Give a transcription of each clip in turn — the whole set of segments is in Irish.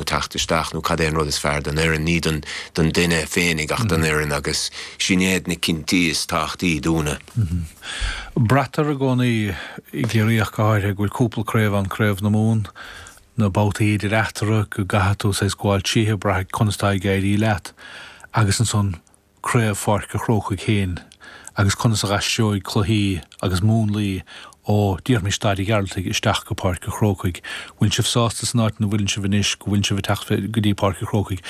nó teacht isteach nó cad é an rud is fearr don fhoireann, ní don duine féinig ach don fhoireann agus sin iad na cinntí is tábhachtaí dúnne. Braitear i gcónaí, i gCiarraí ach go háirithe, go bhfuil cúpla craobh ann, Craobh na Mumhan, na babhtaí idir eatarthu, go gcaithfidh tú saghas gabháil tríothu, braith conas atá ag éirí leat agus ansan, craobh Pháirc a' Chrócaigh féin agus conas a aistreoidh cluichí agus múnlaí ó díormaí staid a' Ghearaltaigh isteach go Páirc a' Chrócaigh. Bhfuil sibh sásta san áit ina bhfuileann sibh anois go bhfuileann sibh ag teacht go dtí Páirc a' Chrócaigh?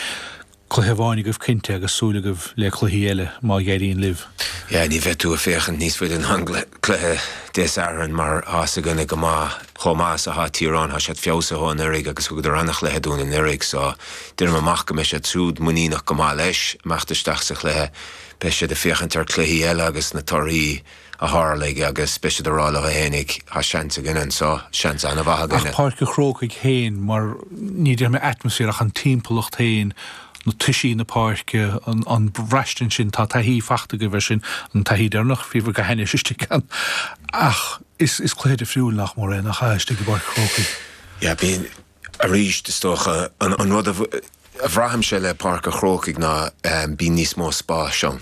Cluiche amháin agaibh cinnte agus súil agaibh le cluichí eile má éiríonn libh. Yeah, ní bheidh tú ag féachaint níos faide ná an cluiche Dé Sathairn mar tá 's againne go maith chomh maith is athá Tír Eoghain thá siad feabhsaithe ó anuiridh agus thugadar ana-chluiche dúinn anuiridh so déanaim amach go mbeidh siad súd muiníneach go maith leis imeacht isteach sa chluiche. Beidh siad ag féachaint ar cluichí eile agus na torthaí a thárlaigh agus beidh siad ag rá leo fhéinig thá seans againn anso, seans ana-mhaith againn. Páirc an Chrócaigh féin mar, ní déarfaidh mé atmosphere ach an timpeallacht féin, na toisí na páirce, an, an bhraistint sin, tá taithí fachta agaibh ar sin, an taithí deireanach, bhíobhair go hainnis istigh ann ach. Is cluiche difriúil nach mór é, nach ea, istigh i bPáirc an Chrócaigh? Yeah, bíonn. Arís, is dócha, an rud a bhraithimse le Páirc an Chrócaigh ná bíonn níos mó spáis ann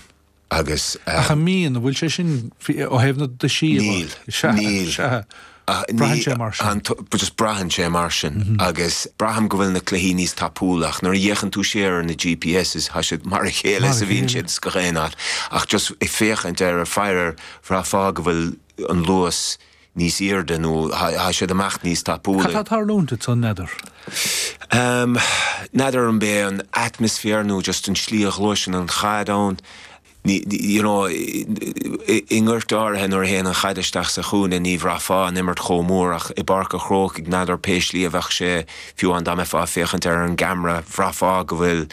agus. Ach an mbíonn? An bhfuil sé sin ó thaobh na dtoisí? Níl. Sea. Níl. Sea. Braitheann sé mar sin. Just braitheann sé mar sin agus braithim go bhfuil na cluichí níos tapúla ach nuair a fhéachann tú siar ar na GPS is tá siad mar a chéile is a bhíonn siad go haon áit ach just ag féachaint ar an pheil bhraithfeá go bhfuil an luas níos airde nó thá siad amach níos tapúla. N'fheadar an b'é an atmaisféar nó just an slí a ghluaiseann an chaid ann. You know, i ngoirt áirithe nuair a théann an chaid isteach sa chúinne ní bhraithfeá an imirt chomh mór ach i bPáirc a' Chrócaigh n'fheadar pé slí a bheadh sé, fiú amháin dá mbeifeá ag féachaint ar an gceamra bhraithfeá go bhfuil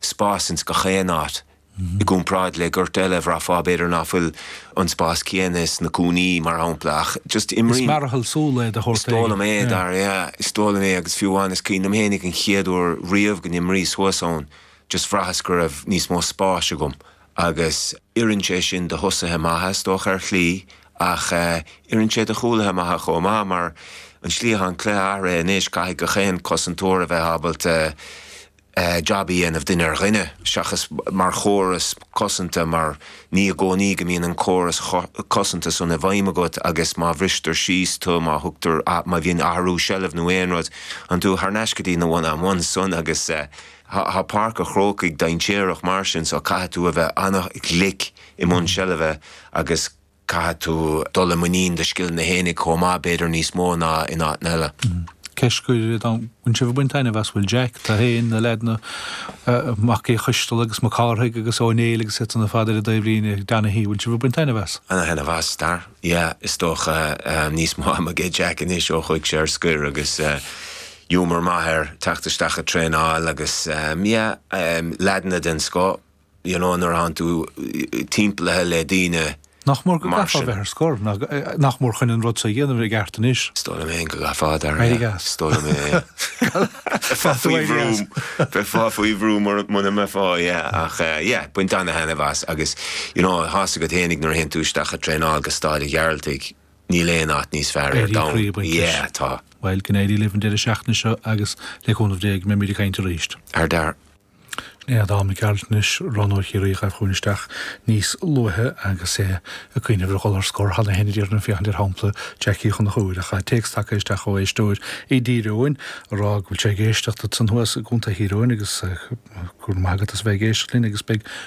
spás ins gach aon áit. I gcomparáid le goirt eile, bhraithfeá, b'fhéidir, ná fuil an spás céanna sna cúinní, mar shampla, ach just. Is mearathal súl é de shórt éigin. Is dóigh liom é, yeah, is dóigh liom é agus fiú amháin, is cuimhin liom fhéinig an chéad uair riamh go n-imrís thuas ann, just bhraitheas go raibh níos mó spáis agam agus. oireann sé sin do thosaithe maithe, is dócha, ar shlí ach oireann sé do chúlaithe maithe chomh maith mar an slí atá an cluiche athraithe anois, caithfidh gach aon cosantóir a bheith ábalta, jab a dhéanamh duine ar dhuine seachas mar chóras cosanta mar ní i gcónaí go mbíonn an córas cosanta san i bhfeidhm agat agus má bhristear síos tú, má thugtar, má bhíonn athrú seilbh nó aon rud, téann tú thar n-ais go dtí na one on ones san agus tá Páirc a' Chrócaigh dainséarach mar sin so caithfidh tú a bheith ana-ghlic i mbun seilbhe agus. Caithfidh tú dul i muinín do scileanna fhéinig chomh maith, b'fhéidir níos mó ná in áiteanna eile. Ceist, an bhfuil sibh ag baint taitneamh as, bhfuil Jack, tú fhéin, na leaideanna, Mac Uí Choisteala agus Mac Cárthaigh agus Ó Néill agus iadsan ar fad ar a dtaobh linn, Donaghy, bhfuil sibh ag baint taitneamh as? Ana-thaitneamh as, a Dhara. Yeah, is dócha, níos mó ama ag Jack anois ó chuaigh sé ar scoir agus ghiúmar maith air teacht isteach ag traenáil agus yeah, leaideanna den scoth. you know, nuair a bhíonn tú timpeallaithe le daoine mar sin. Nach mór go gcaithfeá a bheith ar scor, nach mór chun an rud so a dhéanamh i gceart anois. Is dóigh liom fhéin go gcaithfeá, a Dhara. Mighty gas. Is dóigh liom é. Bheifeá faoi bhrú, bheifeá faoi bhrú muna mbeifeá, yeah, ach, yeah, baint ana-thaitneamh as agus, you know, sásamh agat fhéinig nuair a théann tú isteach ag traenáil go Staid a' Ghearaltaigh, níl aon áit níos fearr ar domhan. Éirí croí ag baint leis. Yeah, tá. Bhuel, go n-éirí libh an deireadh seachtaine seo agus le cúnamh Dé go mbeimid ag caint arís. Ar Dharragh. Sin é Adam Mac Gearailt ansan, roghnóir Chiarraí a ghaibh chugainn isteach níos luaithe agus é ag cuimhneamh ar dhul ar scor tar éis an aonaigh ar ndóigh ag féachaint ar shampla Jack Uí Chonchúir, ach tá téacs tagtha isteach ó éisteoir i dTír Eoghain ag rá go bhfuil sé ag éisteacht linn ansan thuas i gContae Thír Eoghain agus go raibh maith agat as a bheith ag éisteacht linn agus beidh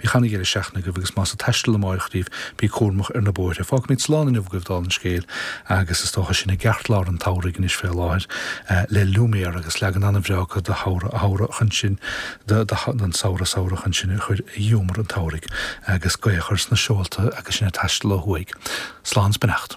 Bíodh an-deireadh seachtaine agaibh agus más ag taisteal amáireach daoibh, bíg cúramach ar na bóithre. Fágfaimid slán inniu agaibh, dála an scéil, agus is dócha sinn i gceartlár an tsamhraidh anois fé láthair, le Lumiére agus leagan an-bhreá de Shamhradh Samhradh chun sinn de de Samhradh Samhradh chun sinn a chur i ngiúmar an tsamhraidh, agus gaoth a chur sna seolta agus sinn ag taisteal ó thuaidh. Slán 's beannacht.